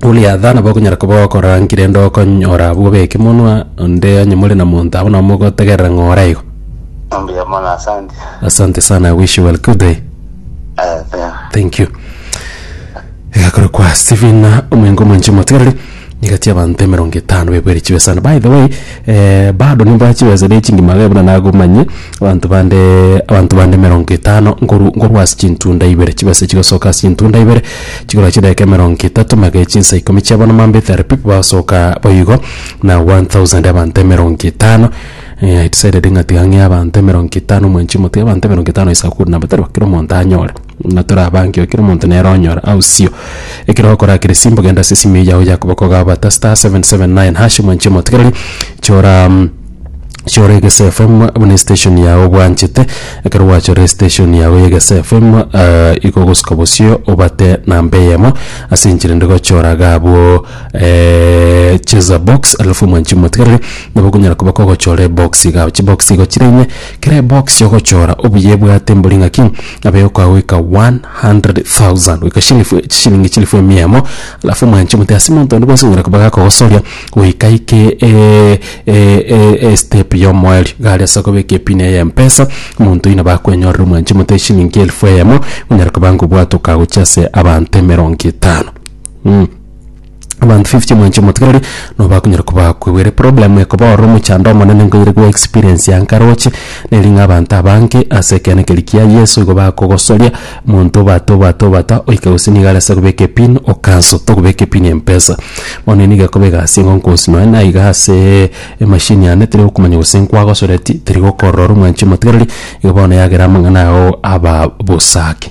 Goliatha nabo okonyara koba okorangire ende okonyora abwo b'ekemonwa, onde onye more na monto abwo nabo mogotegerera ng'a ore igo. Mbuya mono asante. Asante sana, I wish you well. Good day. Eh, thank you. Thank you. Egakora kwa Stephen omoingo omonche omotigareri nigati abanto emerongo etano bebwere chibesani. By the way, Bado nimbae chibesa ne chingima gaibo na nagomanye abanto bande abanto bande emerongo etano nkoru nkorwa ase chintunda ibere. Chibesa chigosoka ase chintunda ibere chigora chidageka emerongo etato magere chinsa ikomi chia bono mambia thirty people bagosoka boigo na one thousand abanto emerongo etano I decided ng'a tiga ng'ee abanto emerongo etano mwanchi motiga abanto emerongo etano is a good number tari bo kera omonto anyore. na torabaange kera omonto nere onyore aosio. Ekero okorakera esimbo genda ase esimiyo yao ya koboko gabata star 779 #, mwanche emotigereri chora mm, chora egese FM buna estation yao obwanchete, ekero gwachorire estation yao ya egese FM eh, igo ogosika bosio obate namba eyemo ase enchera ende gochora iga abwo cheza box alafu mwanchi emotigereri nabo okonyara koba kogochora ebox iga, chibox igo chire ime. Kera ebox y'ogochora obuya ebwate mbori ng'aki, nabo egokoa goika 100,000, goika shilifu chishilingi chilifu emia emo, alafu omwanche omote ase monto onde bwensi ong'ora koba gakogosoria goika aike eh, eh, eh, estep y'omoerio. Iga aria ase okobeka epin eye ya mpesa, omonto oyio nabo akwenyorera omwanche omote eshilingi elifu eyemo, onyare koba ngobwate okagochia ase abanto emerongo etano. Mh. Abanto fifty mwanche omotigereri nobo akonyara kobaa kwegwere problem ekoba ororo omochando omonene nkoyere goe experience ya nkaroche neri ng'a abanto abange ase ekeene keria kia Yeso igo bakogosoria monto obwate obwate obwate oike gose nigo are ase kobeka epin o cancel tokobeka epin y'empesa. Bono nigo ekoba egasi engo nkoonsi nonye na iga aseeee emachine yane teri gokomanya gose nkwagosoreti teri gokorora ore omwanchi omotigereri igo bono yagera amang'ana ao aba bosa ake.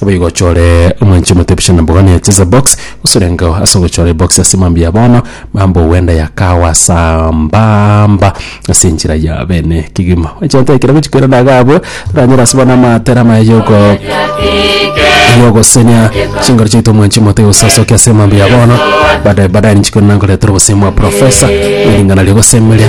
Naboigo ochore omwanche omoteebishe na mbogani ya cheza box, gose orengeo ase ogochora ebox ase mambia ya bono, mambia ogwenda ya kawa sambamba ase enchera ya bene kegima. Ochanta ekero gochia koirana iga abwo, toranyore ase bono amatera amaya yoko yogosenia chinguru chiaito omwanchi omote osasokia ase mambia ya bono, baadaye baadaye ninchi korenda nkoretera obosemi bwa professor, eringana ri'ogosemeria.